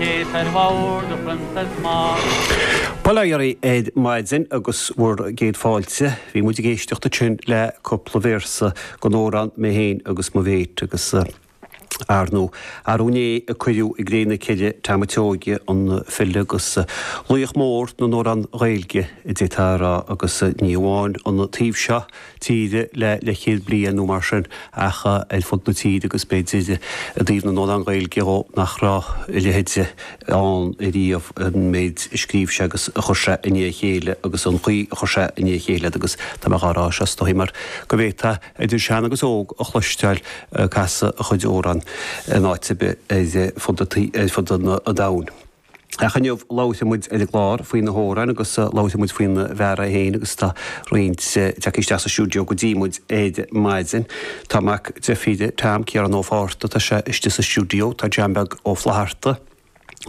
Céasair Mhór, the Princess Maud. Bail ó Dhia oraibh ar maidin agus bhur gcéad fáilte, bhí muid ag éisteacht ansin le cúpla véarsa den amhrán Mé Féin agus Mo Mhéit agus ar ndóigh arú inné a cuireadh i gcré na cille Tom a' tSeoige an file agus laoch mór na n-amhrán Gaeilge, d'fhéadfá a rá agus ní amháin ón taobh seo tíre le leithchéad bliain nó mar sin ach ar fud na tíre agus b'fhéidir i dtaobh na n-amhrán Gaeilge dhó nach raibh a leithéid ann riamh, an méid a scríobh sé agus a chuir sé i ndiaidh a chéile agus an chaoi a chuir sé i ndiaidh a chéile iad agus tá mé dhá rá seo is dóigh mar go bhféadfá idir shean agus óg a chloisteáil ag casadh a chuid amhrán in áit ar bith ar fud an domhain. Ach inniu labhróidh muid ar an gclár faoi na hamhráin agus labhróidh muid faoin bhfear é féin agus tá roinnt tagtha isteach sa stiúideo go dtí muid ar maidin. Tá mac deirfíre Tom, Ciarán Ó Fátharta, tá sé istigh sa stiúideo, tá John Beag Ó Flatharta,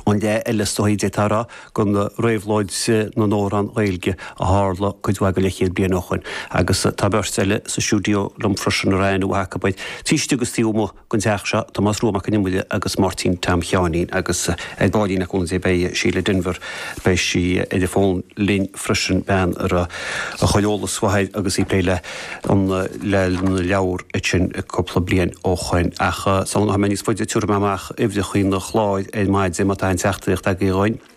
an le ar liostáil d'fhéadfá a rá go réabhlóid na n-amhrán Gaeilge a tharla cuid mhaith de leithchéad bliain ó shoin agus tá beirt eile sa stiúideo liom freisin, a raibh aithne mhaith acu air, taobh istigh agus taobh amuigh. den teach seo, Tomás Rua Mac an Iomaire agus Máirtín Tom Sheáinín, agus ar baillín le cúnamh Dé beidh Síle Denvir, beidh sí ar an bhfón linn freisin, bean a raibh a chuid eolas faoi Tom agus í ag plé le le na leabhair sin cúpla bliain ó shoin. Ach sula ngabhfaidh mé níos faide tabharfaidh mé amach uimhreachaí an chláir ar maidin má tá aon teachtaireacht agaibh dúinn.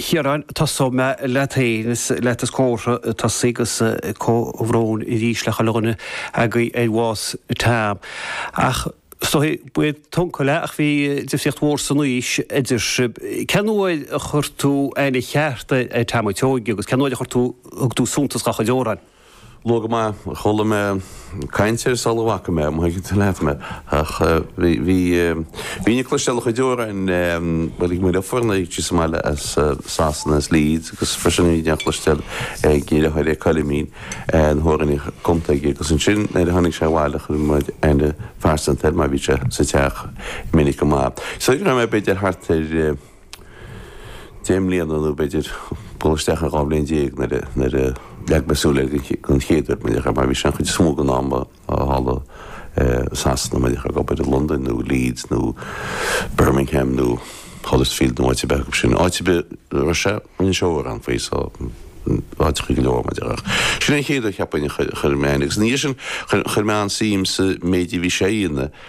Chiaráin, tosóidh mé leat féin is leat is córa tosaí is comhbhrón arís le chuile dhuine agaibh ar bhás Tom. Ach is dóigh ba é d'uncail é ach bhí difríocht mhór san aois idir sibh. Cén uair a chuir tú aithne cheart ar Tom a' tSeoige agus cén uair a chuir tú thug tú suntas dá chuid amhráin? Luath go maith, chuala mé caint air sula bhfaca mé é, má thuigeann tú leat mé. Ach bhí, bhínn ag cloisteáil a chuid amhráin, bhuel, ag mo leofornaigh síos i mbaile as Sasana, as Leeds, agus freisin bhínn á chloisteáil ag a dheartháir, ag Coilimín, na hamhráin a bhí cumtha aige. Agus ansin nuair a tháinig sé abhaile chuir muid aithne phearsanta air mar bhí sé sa teach minic go maith. Is dóigh go raibh mé b'fhéidir thart ar, deich mbliana nó, b'fhéidir, dul isteach ar dhá bhliain déag nuair a, nuair a leag mé súil air den, den chéad uair, mo léan, mar bhí sé an chuid is mó den am a, thall i Sasana, mo léan, ag obair i Londain nó Leeds nó Birmingham nó Huddersfield nó áit ar bith acu sin. Áit ar bith a raibh sé, rinne sé amhrán faoi, so, áiteachaí go leor, mo léan. Ach sin é an chéad uair, cheapfainn, a chuir, a chuir mé aithne, agus ina dhiaidh sin, chuir, chuir mé an-suim sa méid a bhí sé a dhéanamh,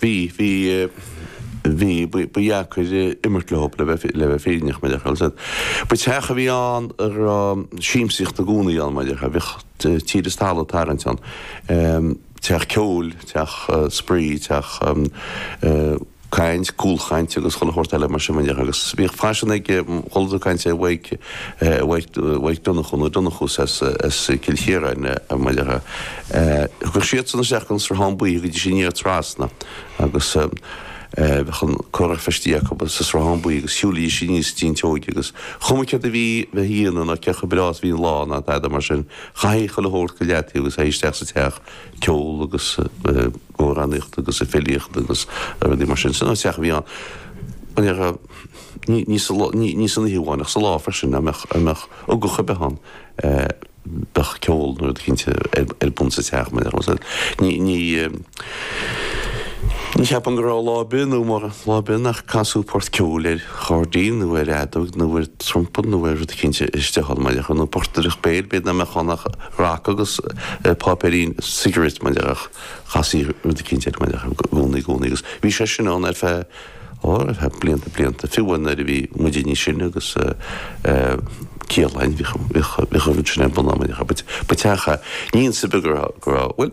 Bhí, bhí, bhí, ba, ba dheacair imirt leo, le bheith, le bheith fírinneach, mar a déarfá. Ba teach a bhí ann a raibh siamsaíocht i gcónaí ann, mar a déarfá, bhíodh tír is talamh ag tarraingt ann, teach ceoil, teach spraoi, teach caint, cúlchaint agus chuile shórt eile mar sin, mar a déarfá, agus bhíodh faisean ag, chuala tú caint ar Mhaidhc, Mhaidhc, Mhaidhc Donnchú, na Donnchús, as Cill Chiaráin, mar a déarfá. Thiocfadh siadsan isteach don Sruthán Buí, thiocfaidís aniar trasna agus bheadh an curach feistithe acu sa Sruthán Buí agus shiúilidís aníos tigh an tSeoighigh agus cuma céard a bhí le dhéanamh ná cé chomh breá is a bhí an lá ná tada mar sin, chaithfeadh chuile shórt go leataobh agus téigh isteach sa teach, ceol agus amhránaíocht agus filíocht agus rudaí mar sin. Sin an teach a bhí ann an oíche, ní san oíche amháin ach sa lá freisin, dá mbeadh ugach ar bith ann. bheadh ceol nó rud eicínt ar bun sa teach mar a déarfá. So ní, ní, ní cheapaim go raibh lá ar bith mórán lá ar bith nach casadh port ceoil ar chairdín nó ar fheadóg nó ar trumpa nó ar rud eicínt istigh ann mar a déarfá. Nó portaireacht béil, b'fhéidir nach mbeadh ann ach raca agus páipéirín cigarettes mar a déarfá ach chastaí rud eicínt air mar a déarfá i gcónaí, i gcónaí agus bhí sé sin ann ar feadh, Ó, tá blianta blianta, fiú nuair a bhí muide níos sine agus Ciarlainn, bhíodh an rud sin ar bun amuigh, ba teach a, níonn sibh go raibh, bhuel,